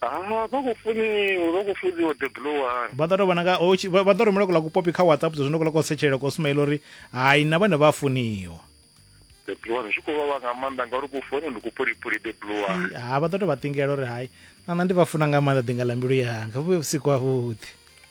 Ah, vha khou funiwa vha khou fudziwa the blue one vha ḓo tou vhona nga ho tshi- vha vha ḓo rumela kuḽa kupopi kha whatsapp zwino kuḽa ko setshelela ko sumaila uri hai na vhone vha a funiwa the blue one zwi khou vhavha nga maanḓa ngauri ku fone ndi kupulipuli the blue one I- ha vha ḓo tou vha ṱingela uri hai nana ndi vha funa nga maanḓa ḓinga ḽa mbilu yanga vhu vhusiku havhuḓi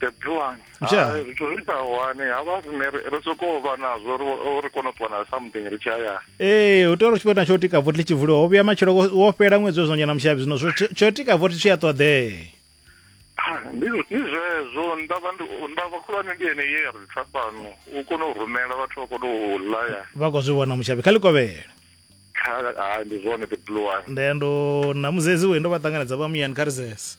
the plan ah, zwithu zwi sa hone ha vha rine ri sokou vha nazwo ri kone u ṱuwa na something ri tshi hayani ee u tea uri tshifhinga tsho tika vothi tshi vuliwa ho vhuya matshelo wo fhela ṅwedzi wezwo nyana mushavhi zwino tsho tika vothi tshi a ṱoḓee ah, ndi zwezwo ndavha ndavha khulwane ndi ene ye ya ri tsa fhano u kone u rumela vhathu vha kone u laya vha khou zwi vhona mushavhi kha likovhela ndi zwone the blue one nde ndo na muzezi we ndo vha ṱanganedza vha muyani kha risese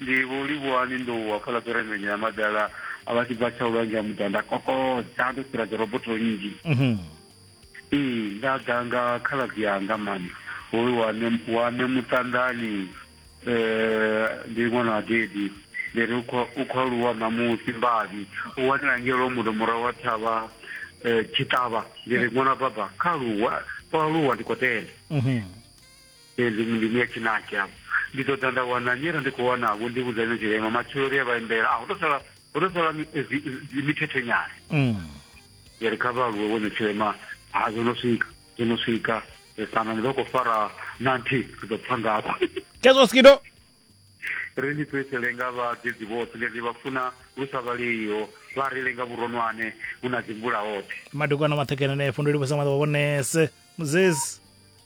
Ndi Vho Livhuwani Ndou wa fhaḽa Kerekeni ya Madala a vha tshi bva Tshaulwanzhe ha Muḓa. Nda kokodza ndo fhira dzorobotho nnzhi. Ee, nda ḓa nga khaladzi anga mani hoyu wa ne wa ne Muṱanḓani ndi ṅwana wa Dedi. Ndi ri u khou u khou aluwa ṋamusi Mbavhi. U wanela ngei Lwamundo murahu ha thavha Tshiṱavha. Ndi ri ṅwana baba kha aluwe o aluwa ndi khou tenda. Ee, ndi ndi ndi ya Tshinaki afho. Ndi ḓo ḓa nda wana nnyi arali ndi khou wana vho ndi vhudza ine tshirema matshelo ri a vha imbela a hu to sala hu to sala mi- eh, zi- zi- mithethe nyana Mm. ya ri kha vha aluwe vhone tshirema ha zwo no swika zwo no swika Eh, kana ni ḓo khou fara na nthihi ri ḓo pfa ngafho Kezo skido. ri ni fhedzele nga vhadedzi vhoṱhe ngeno ndi vha funa lu sa vhaleiho vha ri lenga vhuronwane hu na dzi mvula hoṱhe Madokwana maṱhekene ne fhunduli vhasa maḓa vhonese. Muzesi.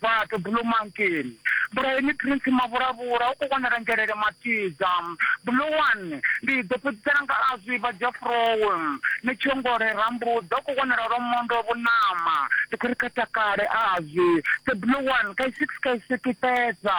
Vha ḓo Bulo Mankeni. Bulo ini Prince Mavhulavhula u khou wanala Ngelele Matidza. Bulo one, Ndi ḓo fhedzisela nga a zwi vha Jafroe. Ni Tshongole Rambuḓa u khou wanala Lwamondo Vhunama. Ndi khou ri kha takale a zwi pfe Bulo one, Kaisiki Kaisiki fhedza.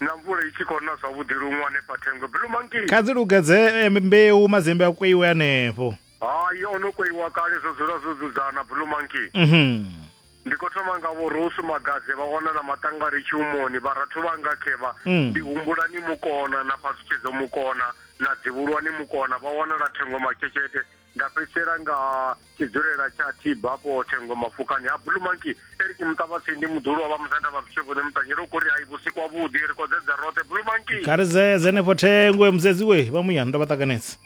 Na mvula i tshi khou na zwavhuḓi luṅwe hanefha thengwe blue monkey. Kha dzi lugedze eh, mbeu madzembe a kweiwe hanefho. Hai o no kweiwa kale zwo dzula zwo dzudzana blue monkey. Mhm. Ndi khou thoma nga vho Rosu Magadze vha wana na maṱangari tshiumoni vharathu vhanga khevha Mm. ndi humbula ni mukona na phaṱhutshedzo mukona na dzivhulwani mukona vha wanala thengo makhetshete Nda fhedzisela nga tshidzulela tsha Tiba afho Thengo Mafukani ha Blue Monkey. Eric Muṱavhatsindi muḓulu wa vha musanda vha Vhishevhoni Muṱanyela u khou ri hai vhusiku ha vhuḓi ri kodzedza roṱhe Blue Monkey. Kha ri zedze henefho Thengwe musedziwe vha muyani ndo vha ṱanganedza.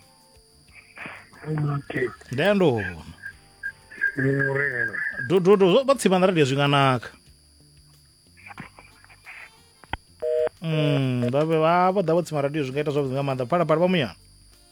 Monkey. Nda ya ndo huma. Murena. Dododo zwo vha tsima na radio zwi nga naka. Mm, vha vha vho ḓa vho tsima radio zwi nga ita zwavhuḓi nga maanḓa. Phalaphala vha muyani.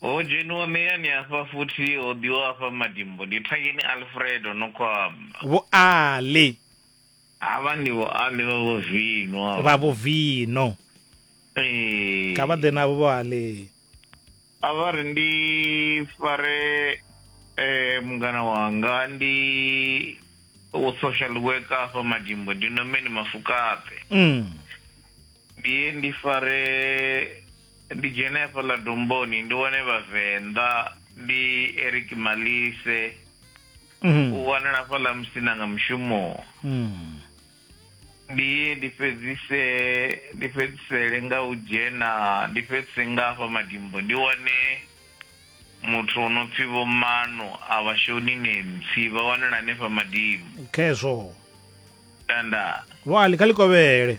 Ho dzheniwa muyani hafha futhi ho ḓiwa hafha madimbo. Ndi Thangeni Alfredo Nokwama. Vho Ali. Havha ndi Vho Ali vha Vho Vino havha. Vha Vho Vino. Ee. Kha vha ḓe navho Vho Ali. A vha ri ndi fare eh mungana wanga ndi wo social worker hafha madimbo ndi Nomeni Mafukaṱe. Mm. Ndi ye ndi fare Ndi dzhene hafhaḽa domboni ndi wane vhavenḓa ndi Eric Malise mm. u wanala hafhaḽa musina nga mushumo mm. ndi ye ndi fhedzise ndi fhedzisele nga u dzhena ndi fhedzise nga hafha madimbo ndi wane muthu o no pfi vho mano a vhashoni nemtsi vha wanala hanefha madimbo khezwo tanda vho ali kha likovhele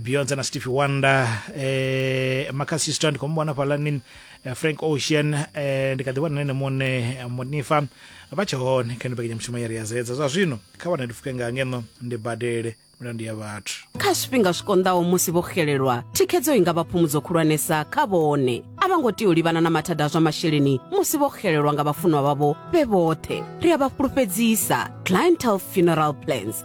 beyonce na stevie wonder eh, makasisto ndikomubona palanin eh, frank ocean eh, ndikadhibona nene mone eh, monifa vachahone kha ndipekenya mushumo yari yazedza zwa zwino kha vana ndifuke nga ngeno ndi badele milandu ya vhathu kha zwifhinga zwi konḓaho musi vho xelelwa thikhedzo i nga vha phumudzo khulwanesa kha vhone a vha ngo tea u livhana na mathada a zwa masheleni musi vho xelelwa nga vhafunwa vhavho vhe vhoṱhe ri a vha fhulufhedzisa clientel funeral plans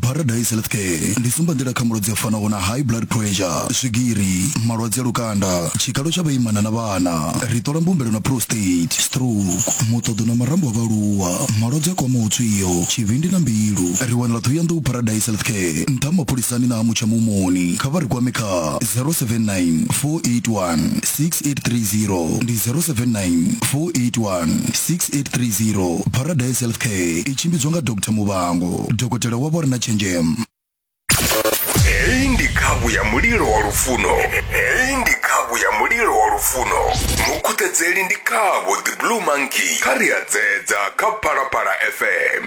paradise health care ndi sumbanḓila kha malwadze a fanaho na high blood pressure swigiri malwadze a lukanda tshikalo tsha vhaimana na vhana ri ṱola mbumbelo na prostate stroke muṱoḓo na marambo a vhaaluwa malwadze a kwamaho tswio tshivhindi na mbilu ri wanala ṱhohoyanḓou paradise health care nṱha mapholisani na ha mutsha mumoni kha vha ri kwame kha 079 481 6830 ndi 079 481 6830 paradise health care i tshimbidzwa nga dr muvhango dokotela wa vho re na tshenzhemo heyi ndi khavhu ya mulilo wa lufuno heyi ndi khavhu ya mulilo wa lufuno mukhuthedzeli ndi khavho the blue monkey kha ri a dzedza kha phalaphala fm